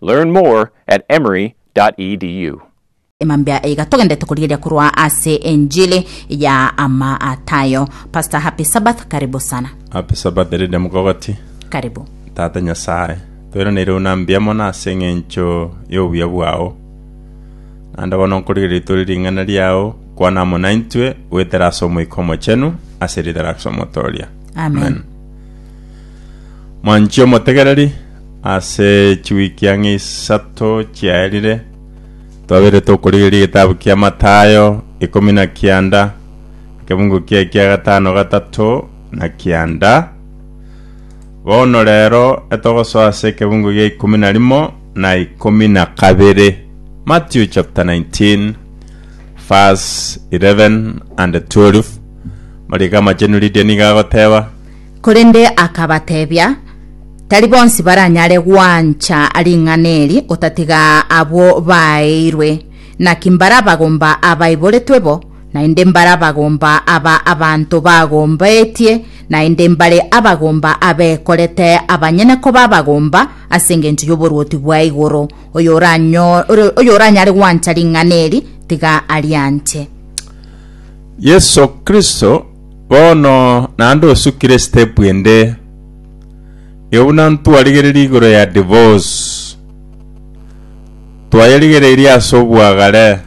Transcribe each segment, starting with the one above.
Learn more at emory.edu. Emambia iga togendete korigeria korwa ase enchili ya Amatayo. Pastor happy Sabbath karibu sana. Happy Sabbath Lydia Mukogoti. Karibu. Tata Nyasae, twereneire buna mbuya mono ase eng'encho y'obuya bwao. Naende bono nkorigereria itore ring'ana riao, kwana amo naintwe, goetera ase Omoika Omochenu, ase riita riao ase Omotooria. Amen. Amen. Mwanchi omotegereri, ase chiwiki ang'e isato chiaerire, twabeire tokorigereria egetabu kia Mathayo ikomi na kianda, ekebugu kiaye kia gatano gatato na kianda. Bono rero etogosoa ase ekebugu gia ikomi na rimo na ikomi na kabere. Matthew chapter 19 verse 11 and 12. Mariko Amachenu Lydia nigo agoteba, Korende akabatebia, Tari bonsi baranyare gwancha ring'ana eri, otatiga abwo baaeirwe. Naki mbarabagomba abaiboretwe bo, naende mbarabagomba aba abanto bagombetie, naende mbare abagomba abekorete abanyene koba abagomba ase engencho y'oboruoti bwa igoro. Oyo oranyo- ore- oyo oranyare gwancha ring'ana eri, tiga arianche. Yeso Kristo Bono naende osukire step ende, nigo buna ntwarigereiri igoro ya divorce, twayerigereiri ase obwagare,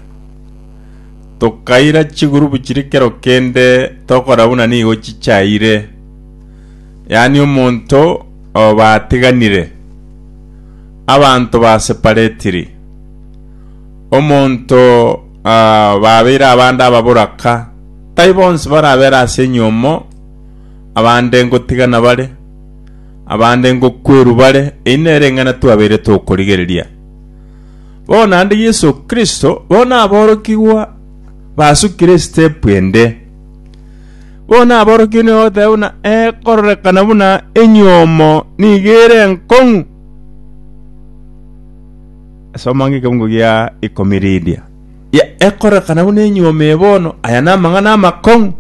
tokaira chigroup chiria kero kende tokora buna nigo chichaire, yaani omonto oba atiganire, abanto ba separetiri, omonto ah babeire abande ababoraka. Tai bonsi barabere ase enyomo, abande ngotigana bare, abande ngokwerwa bare, eyi nering'ana twabeire tokorigereria. Bono naende Yeso Kristo, bono aborokigwa basukire esitepu ende. Bono aborokigwa nigo bagoteba buna ee kororekana buna enyomo nigo ere enkong'u. Soma ng'ekeungu gia ikomi Lidia. ya ekorekana buna enyuoma eye bono, aya namang'ana amakong'u.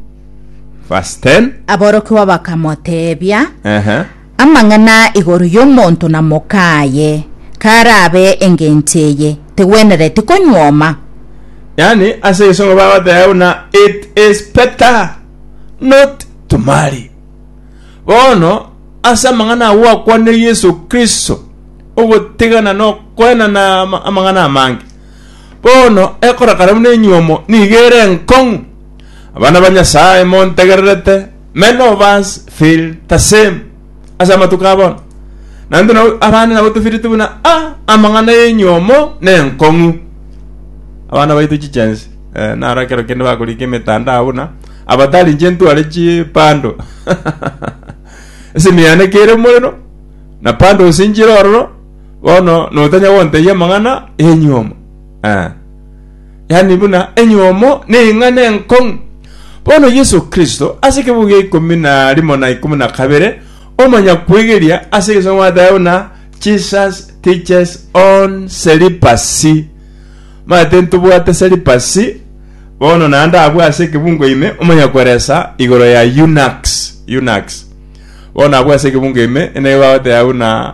Verse 10, Aborokigwa bakamoteebia, ehe, Amang'ana igoro y'omonto na mokaaye, karabe engencho eye, tegwenereti konyuoma. yaani ase egesongo bagoteba buna it is better not to marry. Bono ase amang'ana aya gwakwanire Yeso Kristo, ogotigana nokoenana ama- amang'ana amange. Bono ekorakara buna enywomo nigo ere enkong'u. Abana ba Nyasae montegererete, many of us feel the same ase amatuko a bono. Naende nabo abande nabo tofiriti buna ah amang'ana y'enywomo na enkong'u. Abana baito chichensi eh, naro ekero kende bakorika emetandao buna abatari inche ntware chipando esimi yane kere morero na pandos nchire ororo Bono notanya gontebia amang'ana y'enyiomo? Ee. Yaani buna enyiomo ning'ana enkong'u. Bono Yeso Kristo, ase ekebugo gia ikomi na rimo na ikomi na kabere, omonyakwegeria ase egesango bwatebete buna Jesus teaches on celibacy. Manyete ntobwate celibacy, bono naende abwo ase ekebungo ime omonyakweresa igoro ya eunuchs, eunuchs. Bono abwo ase ekebungo ime, enegete bagoteba buna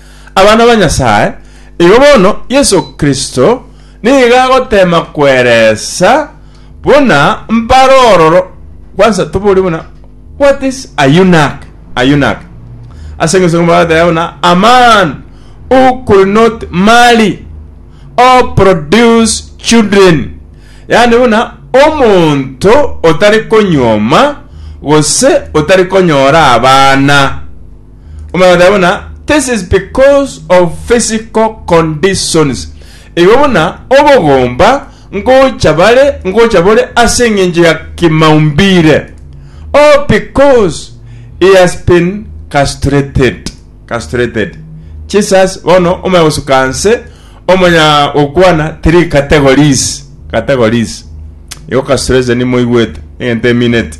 Abana ba Nyasae, igo bono Yeso Kristo nigo agoteema kweresa buna mbare ororo kwansa tobori buna What is a eunuch? A eunuch. Ase engesungu bagateba buna a man who could not marry or produce children. Yaani buna omonto otari konyuoma gose otari konyora abana. omanyete buna this is because of physical conditions igo buna obogomba ngocha bare ngocha bore ase eng'encho ya kimaumbire or because he has been castrated castrated Jesus bono omanya gosuka nse omanya gokwana three categories categories igo castration moigwete egento emineti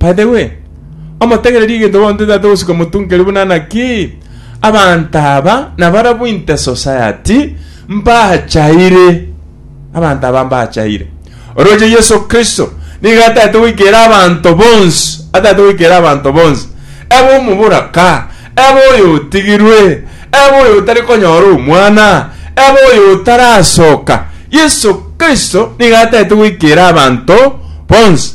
By the way, omotegererie egento bontwe tata ogosika omotunkeri buna naki abanto aba nabarabwo inte society mbachaire. Abanto aba mbachaire. Oroche Yeso Kristo nigo atagete goikeera abanto bonsi, atagete goikeera abanto bonsi. Ebe omoboraka, ebe oyotigirwe, ebe oyotari konyora omwana, ebe oyotaraasoka, Yeso Kristo nigo atagete goikeera abanto bonsi.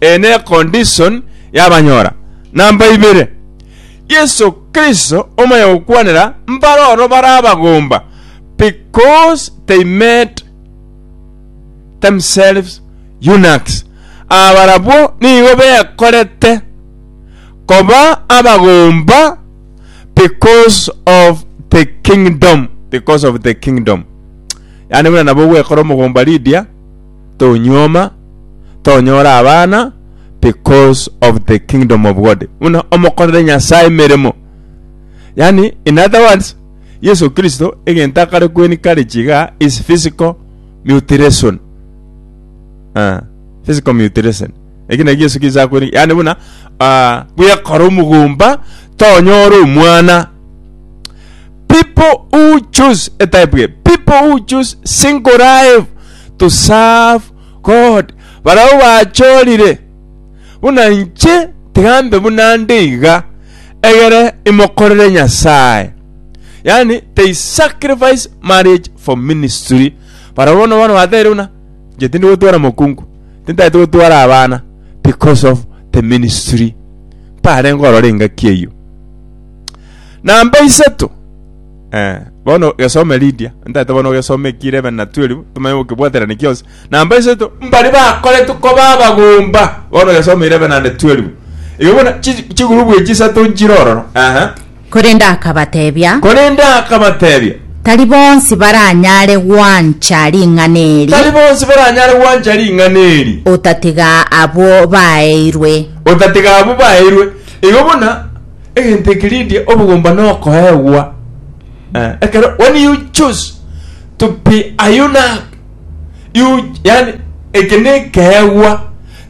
Eye ne condition y'abanyora. Namba ibere, Yeso Kristo omanya gokwanera mbare oro bare abagomba because they made themselves eunuchs. Aba barabwo nigo bekorete koba abagomba because of the kingdom, because of the kingdom. Yaani buna nabo ogwekora omogomba Lydia, tonyuoma tonyora abana because of the kingdom of God buna omokorere Nyasaye meremo yani in other words Yesu Kristo egento akare kweni kare chiga is physical mutilation uh, physical mutilation eki naki Yesu Kristo akweni yani buna uh, bwekora omogomba tonyora omwana People who choose a type here. People who choose single life to serve God. Barao bachorire buna nche tigambe buna nde iga egere imokorere Nyasaye. Yani they sacrifice marriage for ministry. Barao bono bono batere buna nche tindi gotwara mokungu. Tintaete gotwara abana because of the ministry. Mpare ngorore engaki eyio. Na mbaiseto, eh, bono gesome Lydia, ntaete bono ogesome ki 11 na 12, tomanye gokebwaterania gionsi. Na mbaiseto, mbari bakoretwe koba abagomba, bono gesome 11 and 12. Igo bono chi- chigurubu echi isato nchire ororo, ehe. Korende akabatebia, Korende akabatebia, Tari bonsi baranyare gwancha ring'ana eri, tari bonsi baranyare gwancha ring'ana eri, otatiga abwo baeirwe. otatiga abwo baeirwe. Igo buna Egento eke rindie obogomba nokoegwa. Eh, ekero when you choose to be a eunuch you yani eke nekeegwa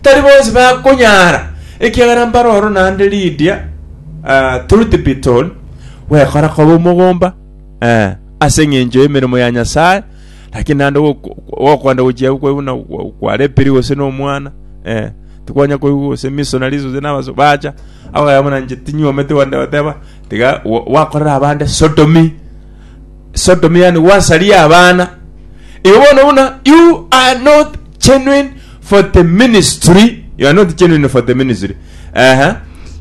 tari bonsi bakonyara ekiagera mbare oro naende ridia ah, truth be told gwekora koba omogomba eh, ase eng'encho y'emeremo ya nyasaye lakini naende gokwenda gochia kweguna kwarepiri gose nomwana eh, tikwanya koigwa gose missionaries gose nabaso bacha abagaya buna nche tinyuomete gwande bateba tiga wa- wakorera abande sodomy sodomy yani wasaria abana igo bono buna you are not genuine for the ministry you are not genuine for the ministry ehe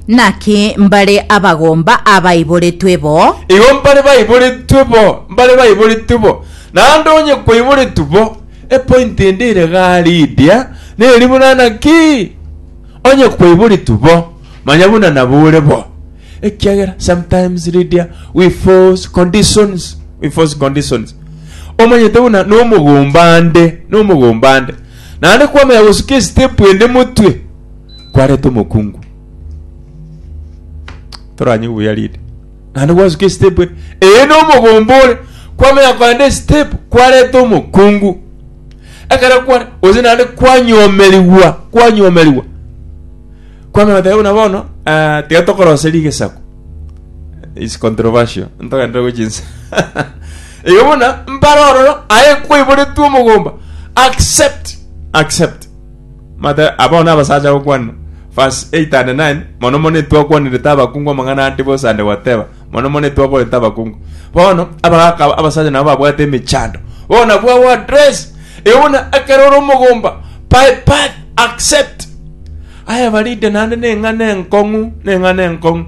Naki mbare abagomba abaiboretwe bo, igo mbare baiboretwe bo mbare baiboretwe bo naende onye kwaiboretwe bo Epoint ende ere gari idia neri buna naki onye kwaiboritwe bo manya buna nabo ore bo ekiagera sometimes ridia we force conditions we force conditions omanyete buna nomogomba ande nomogomba ande naende kwamanya gosuka estep ende motwe kwareta omokungu toranywe buya ridia naende gwasuka esitepu ere eye nomobomba ore kwamenya kogenda esitepu kwareta omokungu ekero kware gose naende kwanyomerigwa kwanyomerigwa kwamenya goteba buna bono ah, tiga tokorose rigesaku is controversial ntogendere gochinsa igo buna mbare ororo aye kwaiboretwe omogomba accept accept Mata abao nabasacha gokwana, Verse 8 and 9 Mono mono etwakwanirete abakungu amang'ana ande bonsi ande goteba, mono mono etwakorete abakungu. Bono abagaka aba abasacha nabo babwate emechando. Bono nabwo our address. Euna ekero ore omogomba, by birth accept. Aye barinde naende neng'ana enkong'u, neng'ana enkong'u.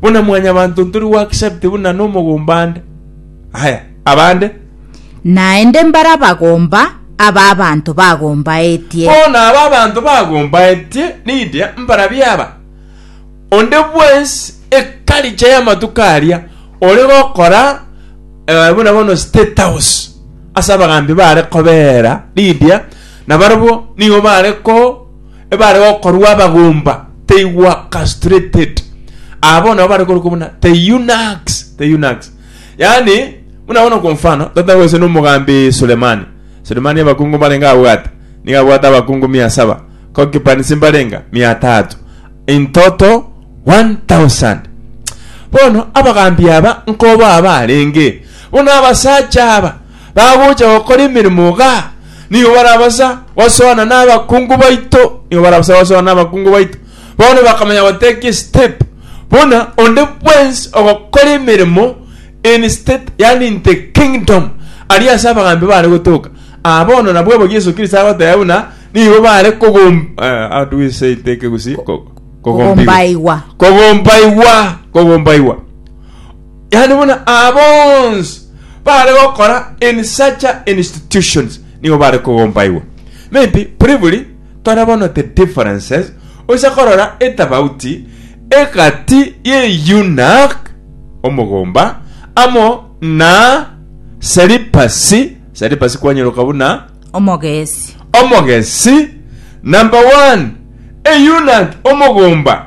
Buna mwanyabanto ntori gwakisabete buna nomogomba ande. Aya, abande. Naende mbare abagomba aba abanto bagombaetie. Bono aba abanto bagombaetie nindia mbarabia aba. Onde bwensi ekaricha y'amatuko aria ore gokora eh, buna bono State House ase abagambi baare kobeera nindia, na barabwo nigo baare ko ebare gokorwa abagomba teigwa castrated abo nabo bare korokwa buna the eunuchs the eunuchs yani buna bono kwa mfano tata gose nomogambi Sulemani Sulemani abakungu barenge abwate niga abwate abakungu mia saba concubines mbarenga mia tatu in total 1000 bono abagambi aba nkoba abarenge bono abasacha aba bagocha gokora emeremo iga, nigo barabasa gosoana nabakungu baito, nigo barabasa gosoana nabakungu baito. Bono bakamanya goteka esitep, buna onde bwensi ogokora emeremo in state, yaani in the kingdom, aria ase abagaambi baare gotoka. Aa bono nabwo obo Yeso Kristo agoteba buna nigo baare kogom eh, how do we say in the Kegusii? Ko- Kogombaigwa. Kogombaigwa, kogombaigwa. Yaani buna aba bonsi bare gokora in such a institutions nigo bare kogombaigwa. Maybe briefly tore bono the differences oise korora etabauti egati ye eunuch omogomba amo na celibacy celibacy kwanyeroka buna omogesi omogesi number one eunuch omogomba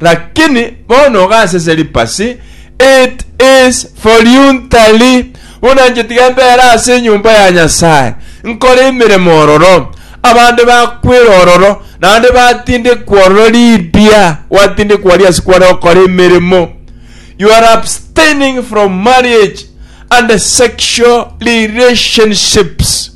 Lakini bono gasese ripasi, it is voluntary, buna inche tiga mbere ase enyomba ya Nyasae, nkore emeremo ororo, abande bakwere ororo, naende batindekwe ororo riria gwatindekwa aria ase kware gokora emeremo. You are abstaining from marriage and sexual relationships.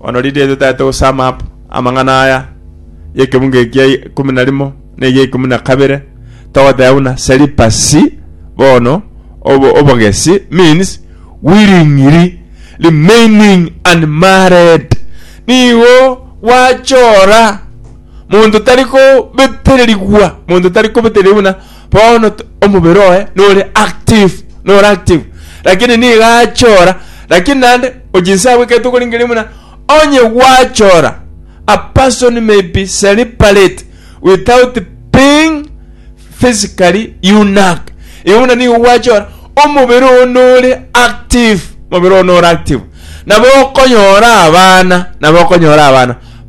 Bono riria totaete go sum up amang'ana aya y'ekeunga eki gia ikomi na rimo na egia ikomi na kabere togoteba buna celibacy bono obo- obogesi means willingly remaining unmarried nigo gwachora monto tari kobetererigwa monto tari kobetereri buna bono t- omobere oye nore active nore active lakini niga achora lakini naende ochinsabu ekero tokoringeria buna onye gwachora a person may be separate without being physically unique igo buna nigo gwachora omobere oo nore active omobere oo nore active nabo okonyora abana nabo okonyora abana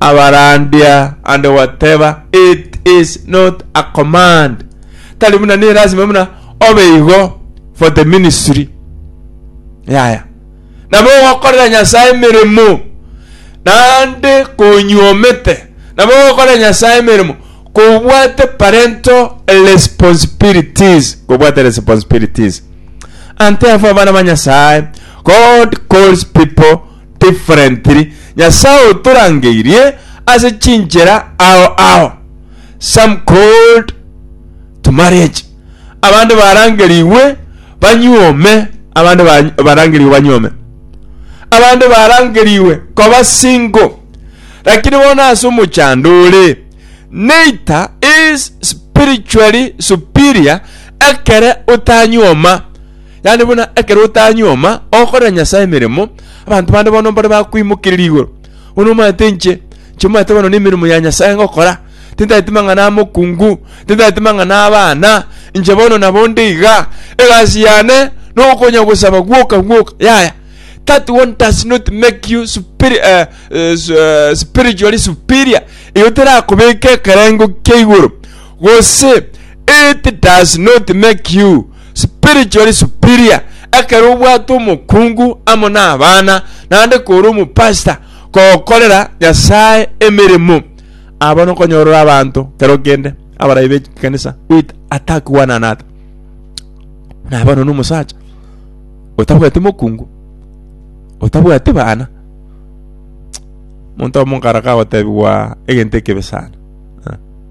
Abarandia ande gwateba, It is not a command, tari buna nelasima buna obe igo for the ministry. Yaya. Nabo ogokorera Nyasae emeremo, naende konyuomete, nabo ogokorera Nyasae emeremo kobwate parental responsibilities, kobwate responsibilities. And therefore, abana ba Nyasae, God calls people differently Nyasaye otorangeirie ase chinchera ao ao. Some called to marriage abande barangerigwe banyuome abande ba barangerigwe banyuome. Abande barangerigwe koba single lakini bono ase omochando ore neita is spiritually superior ekere otanyuoma. Yaani buna ekero otanyuoma okorera Nyasae emeremo, abanto bande bono mbare bakoimokereria igoro. Bono omanyete inche, inche omanyete bono nemeremo ya Nyasae ngokora, tintageti mang'ana amokungu, tintageti mang'ana abana, inche bono nabo nde iga, egasi yane nokonya gosaba gwoka gwoka, yaya. That one does not make you superi- eh, eh, su- eh, spiritually superior. Eyo terakobeka ekerengo kia igoro. Gose it does not make you spiritually superior ekero obwate omokungu amo n'abana naende kore omopastor kokorera Nyasae emeremo. Abo nokonyorora abanto kero kende abarai b'ekanisa with attack one another. Nabo nono omosacha otabwati mokungu otabwati bana monto omonkara kagotebiwa egento ekebe sana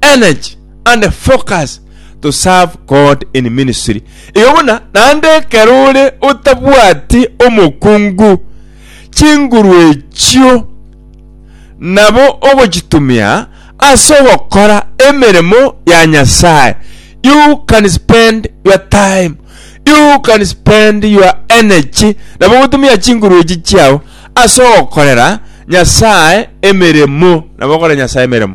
energy and focus to serve God in ministry. Igo buna naende ekero ore otabwati omokungu, chinguru echio nabo ogochitumia ase ogokora emeremo ya Nyasae. You can spend your time, you can spend your energy nabo ogotumia chinguru echi chiao ase ogokorera Nyasae emeremo, nabo okore Nyasae emeremo.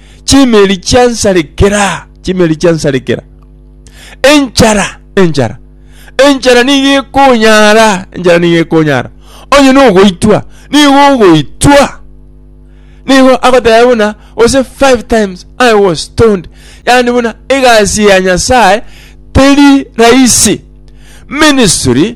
chimeri chiansarekera, chimeri chiansarekera. Enchara, enchara, enchara nigo ekonyara, enchara nigo ekonyara. Onye nogoitwa, nigo ogoitwa. Nigo agoteba buna, ose five times I was stoned. Yani buna egasi ya Nyasaye teri rahisi. Ministry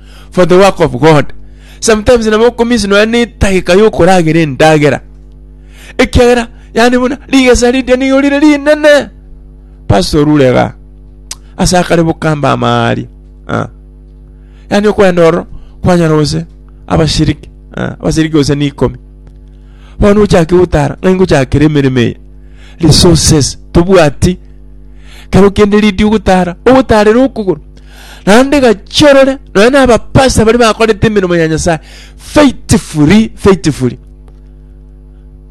for the work of God. Sometimes nabo okomiss nonya na etageka ya okoragera endagera. Ekiagera yani buna rigesa riria nigo rire rinene. Pastor Rurega ase akare bokamba amaari. Ah. Yani okwenda oro kwanyora gose abashiriki. Ah. Abashiriki gose ni ikomi. Bono ochake gotara ng'ai ngochakera emeremo eye. Resources tobwati kero kende ridio ogotara ogotarera okogoro naende gachia orore, nonya na abapasita baria bakorete emeremo ya Nyasaye faithfully, faithfully.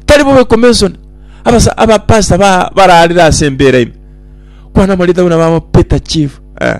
Tari bobe commission abasa abapasita ba bararire ase embera ime. Kwana morita buna baba Peter Chief. Eh.